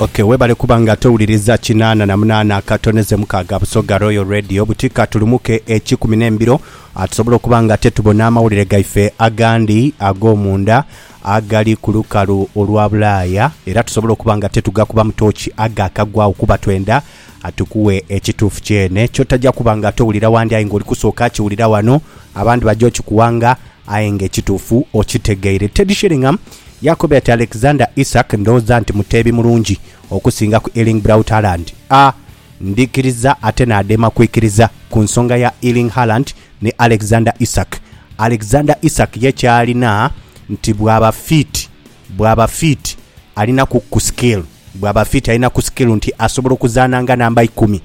Okay, webale kuba nga towuliriza kinaana na munaana akatone ze mukaaga Busoga Royal Radio buti katulumuke ekikumi n'embiro ah, tusobole okuba nga tetubona amawulire gaife agandi ag'omunda agali ku lukalu olwa Bulaaya era tusobole okuba nga tetugakuba mu tooki agaakagwawo kuba twenda Atukuwe ekituufu kyene kyotaja kuba nga towulira wandi aye nga oli kusooka akiwulira wano. Abandi baja okikuwanga aye nga ekituufu okitegeire. Teddy Sheringham yakobera ati, Alexander Isak ndhooza nti muteebi mulungi okusinga ku Erling Braut Haaland. A Ndhikiriza ate naadema kwikiriza ku nsonga ya Erling Haaland ni Alexander Isak. Alexander Isak ye kyalina nti bwaba fiiti Bwaba fit alinaku ku skill bwaba fit alina ku skill nti asobola okuzaana nga namba ikumi.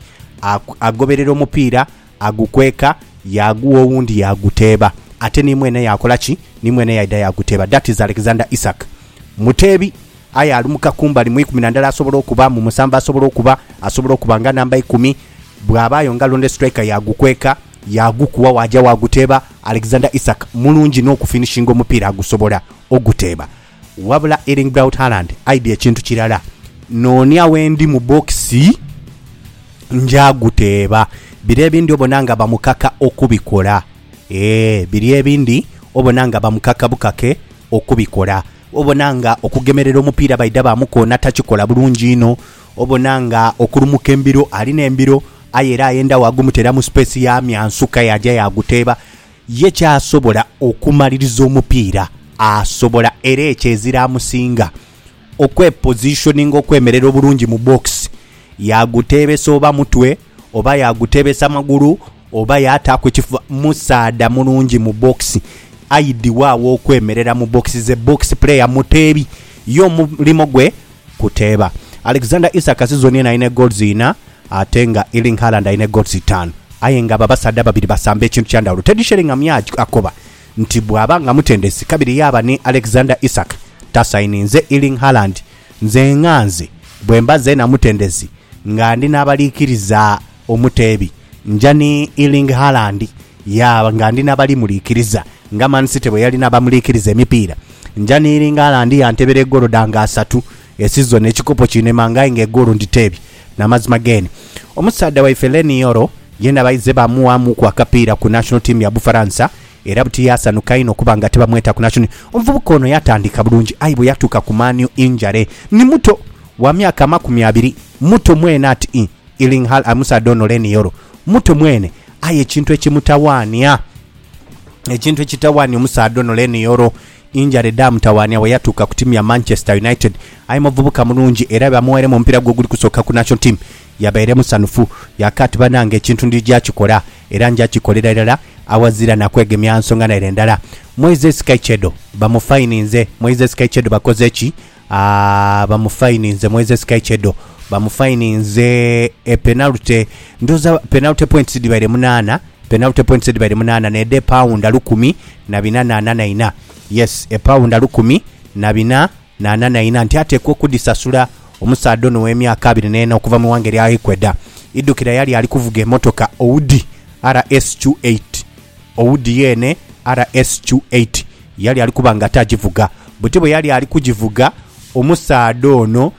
Agoberera omupiira, agukweka, yaagugha owundi yaaguteeba. Ate ni mwene yaakola ki? Ni mwene yaidha yaaguteeba. That is Alexander Isak. Muteebi aye alumuka kumbali mu ikumi na ndala asobola okuba, mu musanvu asobola okuba, asobola okuba nga namba ikumi. Bwabaayo nga londe striker yaagukweka. Yaagukugha waaja waaguteeba Alexander Isak mulungi n'okufinishinga omupiira agusobola oguteeba. Wabula Erling Braut Haaland aidhi ekintu kirala. Noonia wendi mu bokisi nja guteeba. Biri ebindi obona nga bamukaka okubikola. Eeh, biri ebindi obona nga bamukaka bukake okubikola. Obona nga okugemerera omupiira baidha baamukoona takikola bulungi inho. Obona nga okulumuka embiro ali n'embiro aye era ayenda waagumutera mu space ya myansuka yaaja yaaguteeba ye ky'asobola okumaliriza omupiira asobola era ekyo ezira amusinga okwepositioninga okwemerera obulungi mu box yaaguteebesa oba mutwe oba yaaguteebesa magulu Oba yaataaku ekifuba musaadha mulungi mu bbokisi. Aidhi wa aw'okwemerera mu bbokisi? Ze bbokisi puleeya, muteebi. Ye omulimo gwe kuteeba. Alexander Isak sizoni eno alina egooluzi inha ate nga Erling Haaland alina egooluzi itaanu. Aye nga abo abasaadha ababiri basamba ekintu kya ndhawulo. Teddy Sheringham ye akoba nti bw'aba nga mutendesi kabiri yaaba ni Alexander Isak tasayininze Erling Haaland. Nze nghanze bwe mba zeena mutendesi nga ndi n'abaliikiriza. Omuteebi, Nja ni Erling Haaland ya nga ndi n'abalimuliikiriza nga Man City bwe yali n'abamuliikiriza emipiira. Nja ni Erling Haaland ya ntebera egoolo dha nga asatu e sizoni ekikopo kinemaanga aye nga egoolo nditeebye. N'amazima geene. Omusaadha waife Leny Yoro yeena baize baamughamuku akapiira ku National Team ya Bufaransa era buti yaasanuka inho okuba nga tibamweta ku National. Omuvubuka ono yatandika bulungi aye bwe yatuuka ku Man U injury ni muto wa myaka amakumi abiri. Muto mwene ati i. Ilinghal Amusa Dono Lenioro muto mwene aye ekintu ekimutawaania Ekintu ekitawaania omusaadha ono Lenioro injare dhaamutawaania bwe yatuuka ku tiimu ya Manchester United. Aye muvubuka mulungi era bamugheeremu omupiira gwe oguli kusooka ku National Team yabaire musanhufu yaaka ati bannange ekintu ndija kikola era nja kikolera irala awazira na kwegemya nsonga naire ndala. Moises Kaichedo bamufayininze Moises Kaichedo bakoze ki? Aah bamufayininze Moises Caicedo bamufayininze epenalty ndoza penalty points dhibaire munaana penalty points dhibaire munaana needha epaawunda lukumi na bina na ana na ina yes epaawunda lukumi na bina na ana na ina nti ateekwa okudhisasula omusaadha ono ow'emyaka abiri n'ena okuva mu ighanga erya Ecuador idhukira yali ali kuvuga emotoka Audi RSQ8 Owudd yeene RSQ eight yali ali kuba nga tagivuga. Buti bwe yali ali kugivuga, omusaadha ono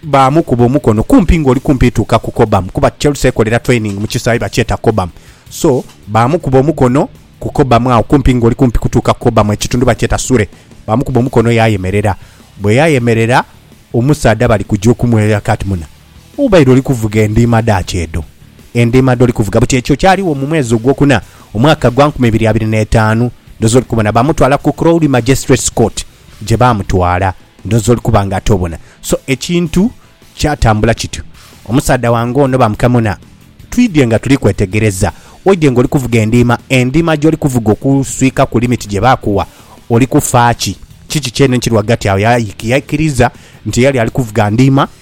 baamukuba omukono kumpi ng'oli kumpi tuuka ku Cobham kuba Chelsea ekolera training mu kisaawe bakyeta Cobham. So, baamukuba omukono ku Cobham agho kumpi ng'oli kumpi kutuuka ku Cobham, ekitundhu bakyeta Sure. Baamukuba omukono yaayemerera. Bwe yayemerera, omusaadha bali kugya okumweyaka ati, Muna. Obaire oli kuvuga endiima dhaaki edho, endiima dh'oli kuvuga buti. Ekyo kyaligho mu mwezi ogwokuna, omwaka gwa nkumi ibiri abiri n'etaanu. Ndhooza oli kubona. Baamutwala ku Crowley Magistrates Court, gye baamutwala. Ndhooza oli kuba nga ate obona. So, ekintu kyatambula kityo. Omusaadha wange ono baamukamona. Twidhye nga tuli kwetegereza. Oidhye nga oli kuvuga endiima. Endiima gy'oli kuvuga okuswikaku limiti gye baakuwa, oli kufa ki? Kiki kyene ekiri ghagati agho? Yaikiriza nti yali ali kuvuga ndiima.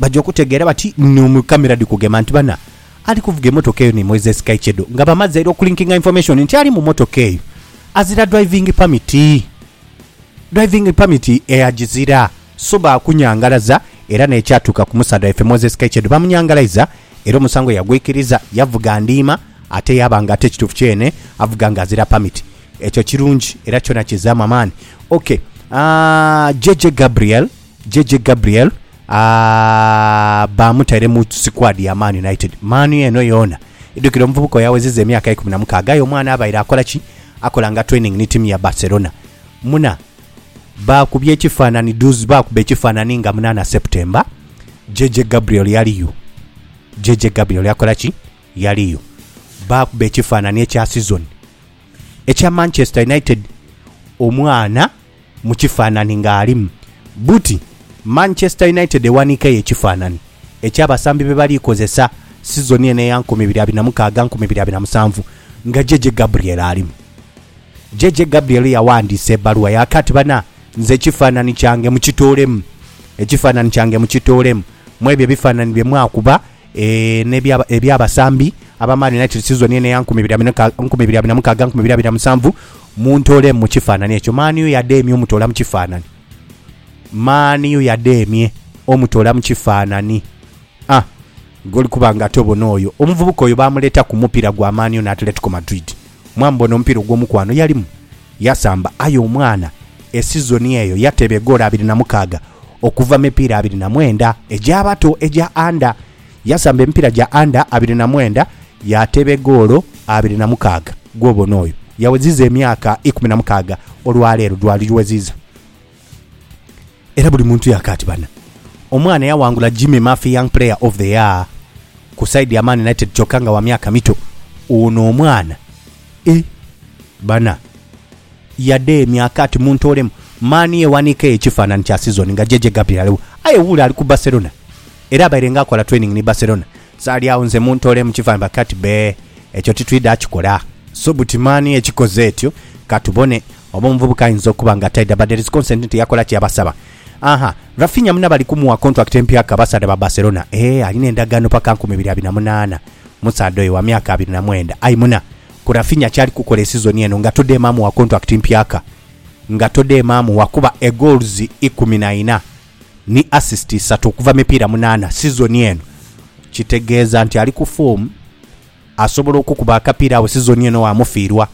Baja okutegeera bati ni mu camera dhi kugema nti bana ali kuvuga emotoka eyo ni Moises Kaichedo nga bamaze era okulinkinga information nti ali mu motoka eyo azira driving permit. Driving permit eagizira so baakunyangalaza era n'ekyatuuka ku musaadha waife Moises Kaichedo baamunyangalaiza era omusango yagwikiriza yavuga ndiima ate yaaba nga ate ekituufu kyene avuga nga azira permit. Ekyo kirungi era kyona kizaamu amaani. Ok, aah JJ Gabriel. JJ Gabriel aah bamutaire mu sikwadi ya Man United. Man U eno yoona idhukira omuvubuka oyo aweziza emyaka eikumi na mukaaga aye omwana abaire akola ki? Akola nga training ni tiimu ya Barcelona. Muna baakubye ekifanhanhi duuzi baakuba ekifanhanhi nga munaana September JJ Gabriel yaliyo. JJ Gabriel yakola ki? Yaliyo. Baakuba ekifanhanhi ekya sizoni ekya Manchester United omwana mu kifanhanhi ng'alimu buti. Manchester United ewanhikeyo ekifanhanhi eky'abasambi be bali kozesa sizoni eno eya nkumi ibiri abiri na mukaaga nkumi ibiri abiri na musanvu nga JJ Gabriel alimu. JJ Gabriel yaghandiisa ebbaluwa yaaka ati, Bana, nze ekifanhanhi kyange mukitoolemu. Ekifanhanhi kyange mukitoolemu mw'ebyo ebifanhanhi bye mwakuba. N'ebya eby'abasambi ab'amaani nayo kirisizibwa ni eno eya nkumi ibiri abiri na nkumi ibiri abiri na mukaaga nkumi ibiri abiri na musanvu, muntoole mu kifaananie ekyo. Mani u y'adheemye omutoola mu kifaananie. Mani u y'adheemye omutoola mu kifaananie. A, goli kuba ng'ate obona oyo omuvubuka oyo baamuleeta ku mupiira gwa Mani u n'Atletico Madrid. Mwambo ono omupiira ogw'omukwano yalimu yasamba aye omwana e sizoni eyo yateeba egoolo abiri na mukaaga okuva mu mipiira abiri na mwenda egy'abato egya Under. Yasamba emipiira gya Under abiri na mwenda yaateeba egoolo abiri na mukaaga. Gw'obona oyo yaweziza emyaka ikumi na mukaaga olwaleero, gwali gweziza. Era buli muntu yakaati bana. Omwana eyawangula Jimmy Murphy Young Player of the Year ku side ya Man United kyoka nga wa myaka mito ono omwana e bana yade myakaati muntoolemu Man U ewanika eyo ekifanani kya season nga JJ Gabriel aliwo aye wuule ali ku Barcelona era abaire nga akola training ni Barcelona Sali agho nze muntoole mu kivandhba kati be. Ekyo titwidha kikola. So buti mani ekikoze etyo. Ka tubone. Oba omuvubuka ayinza okuba nga taidha but there is consent nti yakola kye yabasaba. Aha, Raphinha muna bali kumuwa contract empya ku abasaadha ba Barcelona. Eeh, alina endagaano paka nkumi ibiri abiri na munaana. Omusaadha oyo wa myaka abiri na mwenda. Aye muna, ku Raphinha kyali kukola esizoni eno nga todeema amuwa contract mpyaka. Nga todeema amuwa kuba egoals ikumi na ina. ni assist isatu okuva mipiira munaana sizoni eno, kitegeeza nti ali ku foomu asobola okukuba akapiira agho sizoni eno waamufiirwa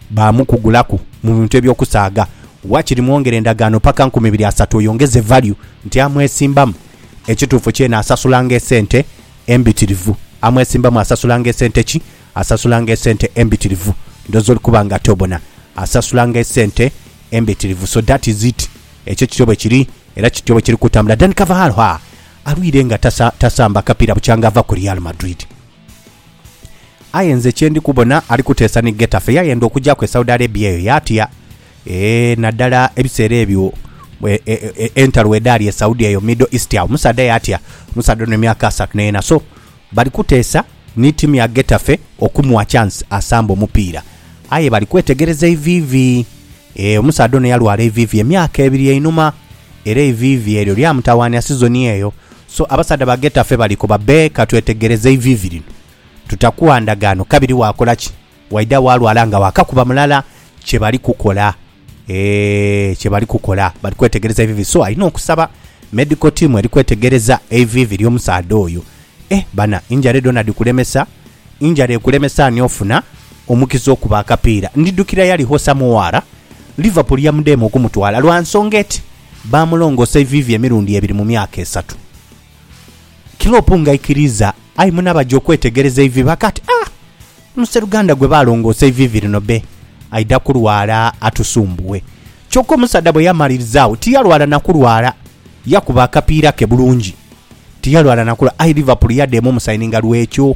baamukugulaku mu bintu eby'okusaaga. Waakiri mwongere endagaano paka nkumi ibiri asatu oyongeze value nti amwesimbamu. Ekituufu kyeene asasulanga esente embitirivu. Amwesimbamu asasulanga esente ki? Asasulanga esente embitirivu. Ndhooza oli kuba ng'ate obona. Asasulanga esente. Embitirivu, so that is it, ekyo kityo bwe kiri era kityo bwe kiri kutambula. Dani Carvahalho alwire nga tasamba kapiira bukyanga ava ku Real Madrid. Aye nze kye ndi kubona ali kuteesa ni Getafe, yayenda okugyaku e Saudi Arabia eyo yaatya. Eeh, naddala ebiseera ebyo entalo bwedhaali e Saudi eyo, Middle East, agho omusaadha yaatya. Omusaadha ono emyaka asatu n'ena. So. Bali kuteesa ni tiimu ya Getafe okumugha chance asambe omupiira aye bali kwetegereza eiviivi. Eeh, omusaadha ono yalwala eiviivi emyaka ebiri einhuma era eiviivi eryo lyamutawaania sizoni eyo. So, abasaadha ba Getafe bali koba bee ka twetegereze eiviivi lino, tutakuwa ndagaano kabiri waakola ki? Waidha walwala nga wakakuba mulala kye bali kukola eeh kye bali kukola bali kwetegereza ivivi so alina okusaba medical team eri kwetegereza eivivi lyo musaadha oyo eeh bana injare dhona dhikulemesa injara ekulemesa ani ofuna omukiza okuba akapiira ndidhukira yali Hosa Muwaara Liverpool yamudheemu okumutwala lwa nsonga eti baamulongoosa eivivi emirundi ebiri mu myaka esatu Klopp ngaikiriiza aye mune abaja okwetegereza eivivi akati aah Museruganda gwe baalongoosa eiviivi lino be aidha kulwala atusumbuwe. Kyoka omusaadha bwe yamalirizagho tiyalwala na kulwala. Yakuba akapiira ke bulungi. Tiyalwala na kulwala. Aye Liverpool yadheema omusayininga lw'ekyo.